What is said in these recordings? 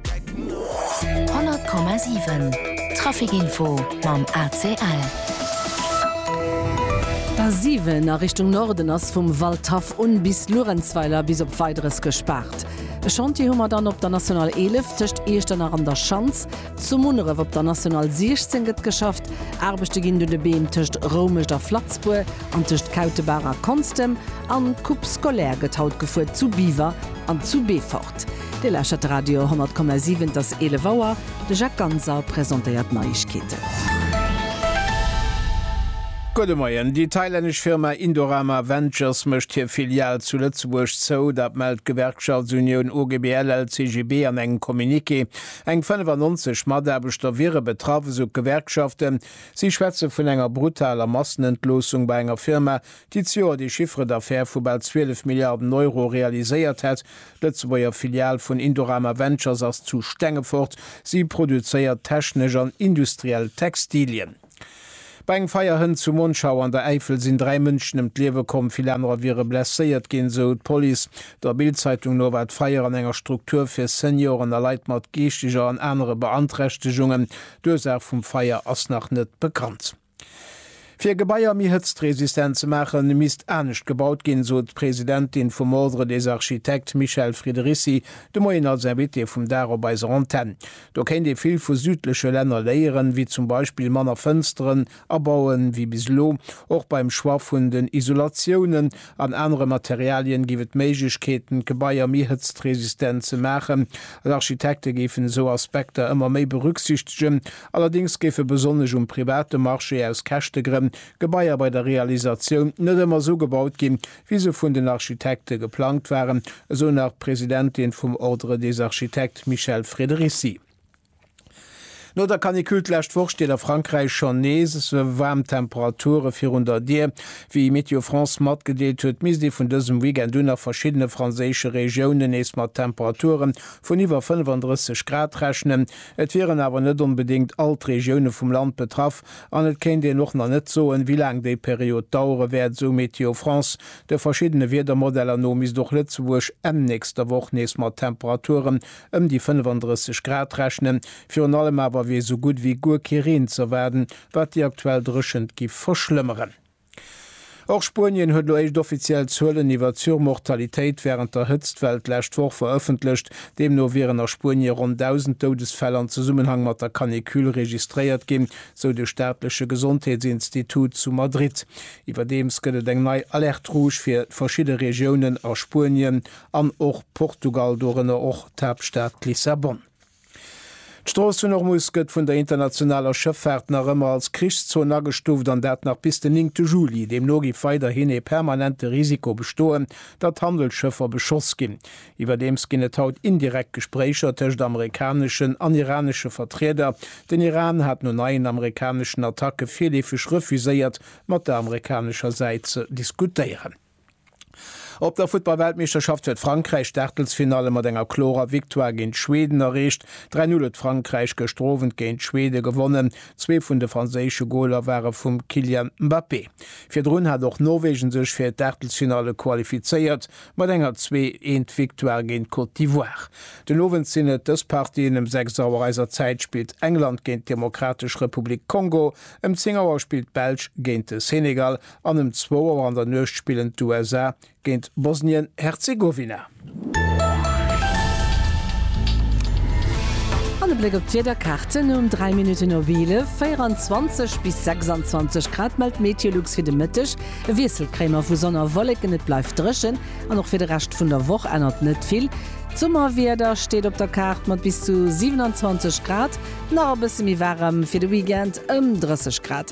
100,7 Trafic-Info mam ACL. D'A7 a Richtung Norden ass vum Waldhaff un bis Luerenzweiler bis op Weideres gespaart. E Chantier hu mer dann op der National 11 tëscht Iechternach an der Schanz. Zu Munneref op der National 16 gëtt geschafft. Aarbechte ginn un de Beem tëscht Roumescht a Flatzbour an tëscht Kautebaach a Konstem. An d'Coupe scolaire gëtt haut gefuer zu Biwer an zu Beefort. Dir lauschtert de Radio 10,7, et ass 11 Auer. De Jacques Ganser presentéiert d'Neiegkeeten. Gudde Moien. Déi thailännesch Firma Indorama Ventures mécht hir Filial zu Lëtzebuerg zou. Dat mellt d'Gewerkschaftsunioun OGBL-LCGB an engem Communiqué. Eng 95 Mataarbechter wiere betraff, esou d'Gewerkschaften. Si schwätze vun enger brutaler Massenentloossung bei enger Firma, déi d'Joer de Chiffre d'affaires vu bal 12 Milliarden Euro realiséiert hätt. D'Lëtzebuerger Filial vun Indorama Ventures ass zu Stengefort. Si produzéiert technesch an industriell Textilien. Bei engem Feierhënt zu Monschau an der Äifel sinn dräi Mënschen ëm d'Liewe komm, vill anerer wiere blesséiert ginn, esou d'Police. Der Bild-Zeitung no war d'Feier an enger Struktur fir Senioren a Leit mat geeschteger an anere Beanträchtegungen. D'Ursaach vum Feier ass nach net bekannt. Fir Gebaier méi hëtztresistent ze maachen, misst anescht gebaut ginn, sot d'Presidentin vum Ordre des architectes Michèle Friderici de Moien als Invitée vum Dag op eiser Antenn. Do kéint ee vill vu südleche Länner léieren, wéi zum Beispill manner Fënsteren abauen wéi bis elo. Och beim Choix vun den Isolatiounen an anere Materialien géif et Méiglechkeeten, d'Gebaier méi hëtztresistent ze maachen. D'Architekte géifen esou Aspekter ëmmer méi berücksichtegen, Allerdéngs géife besonnesch um private Marché aus Käschtegrënn Gebaier bei der Realisatioun net ëmmer esou gebaut ginn, wéi se vun den Architekte geplangt waren, esou nach d'Presidentin vum Ordre des architectes Michèle Frederici. No der Canicule d'lescht Woch steet a Frankräich schonn nees waarm Temperature virun der Dier. Wéi Météo France matgedeelt huet, misst ee vun dësem Weekend un a verschiddene franséische Regiounen nees mat Temperature vun iwwer 35 Grad rechnen. Et wieren awer net onbedéngt all d'Regioune vum Land betraff an et kéint een och nach net soen, wéi laang déi Period dauere wäert, esou Météo France. De verschiddene Wiedermodeller no misst och Lëtzebuerg Enn nächster Woch nees mat Temperaturen ëm déi 35 Grad rechnen. Virun allem awer wier esou gutt ewéi guer kee Reen z'erwaarden, wat déi aktuell Dréchent giff verschlëmmeren. Och Spuenien huet elo éischt offiziell Zuelen iwwer d'Surmortalitéit wärend der Hëtztwell d'lescht Woch verëffentlecht. Deemno wieren a Spuenie ronn 1.000 Doudesfäll an Zesummenhang mat der Canicule registréiert ginn, sou de staatleche Gesondheetsinstitut zu Madrid. Iwwerdeems gëtt et eng nei Alerte rouge fir verschidde Regiounen a Spuenien an och Portugal, dorënner och d'Haaptstad Lissabon. D'Strooss vun Ormuz gëtt vun der internationaler Schëffaart nach ëmmer als Krichszon agestuuft, an dat nach bis den néngte Juli. Deemno géif weiderhin ee permanente Risiko bestoen, datt Handelsschëffer beschoss ginn. Iwwerdeems ginn et haut indirekt Gespréicher tëscht amerikaneschen an iranesche Vertrieder. Den Iran hat no neien amerikaneschen Attacke virleefeg refuséiert, mat der amerikanescher Säit ze diskutéieren. Op der Futtballweltmeeschterschaft huet Frankräich d'Aachtelsfinalle mat enger klorer Victoire géint Schweden erreecht. 3-0 huet Frankräich gëschter Owend géint Schweden gewonnen. Zwee vun de franséische Goler ware vum Kylian Mbappé. Virdrun hat och Norwegen sech fir d'Aachtelsfinalle qualifizéiert mat enger 2 eent Victoire géint Côte d'Ivoire. Den Owend sinn et dës Partien, Ëm 6 Auer eiser Zäit spillt England géint d'Demokratesch Republik Kongo, ëm 10 Auer spillt d'Belsch géint de Senegal. An ëm zwou Auer an der Nuecht spillen d'USA géint Bosnien-Herzegowina. An e Bléck op d'Wiederkaarten, Um 3 Minutten op 11, 24 bis 26 Grad mellt d'Meteolux fir de Mëtteg. E Wiessel kréie mer vu Sonn a Wolleken, et bleift dréchen an och fir de Rescht vun der Woch ännert net vill. D'Summerwieder steet op der Kaart mat bis zu 27 Grad, nach e bësse méi waarem fir de Weekend, ëm 30 Grad.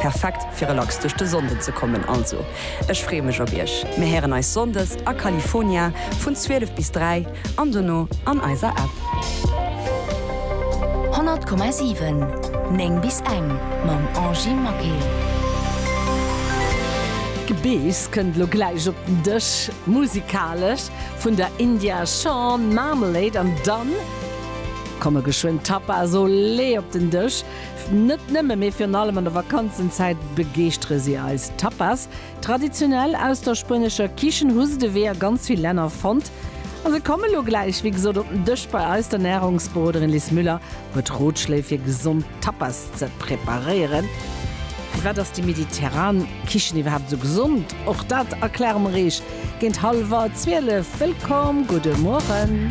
Perfekt fir relax duerch de Sonnden ze kommen, also ech freeë mech op iech. Mir héieren eis Sonndes a California vun 12 bis 3 an dono an eiser App. 100,7 9 bis eng mam Angie Maquet. D'Gebeess kënnt lo gläich op den Dësch, musikalesch vun der India Shawn, Marmalade an dann komme geschwënn d'Tapas, olé op den Dësch. Net nëmme, mee virun allem an der Vakanzenzäit begeeschtere si eis. Tapas, traditionell aus der spuenescher Kichen, hu se de Wee a ganz vill Länner fonnt a se komme lo gläich, wéi gesot, op den Dësch bei eis. D'Ernärungsberoderin Liz Müller huet Rotschléi fir gesond Tapas ze preparéieren. Firwat ass déi mediterran Kichen iwwerhaapt esou gesond? Och dat erkläre mer eech géint hallwer 12. Wëllkomm, gudde Mueren.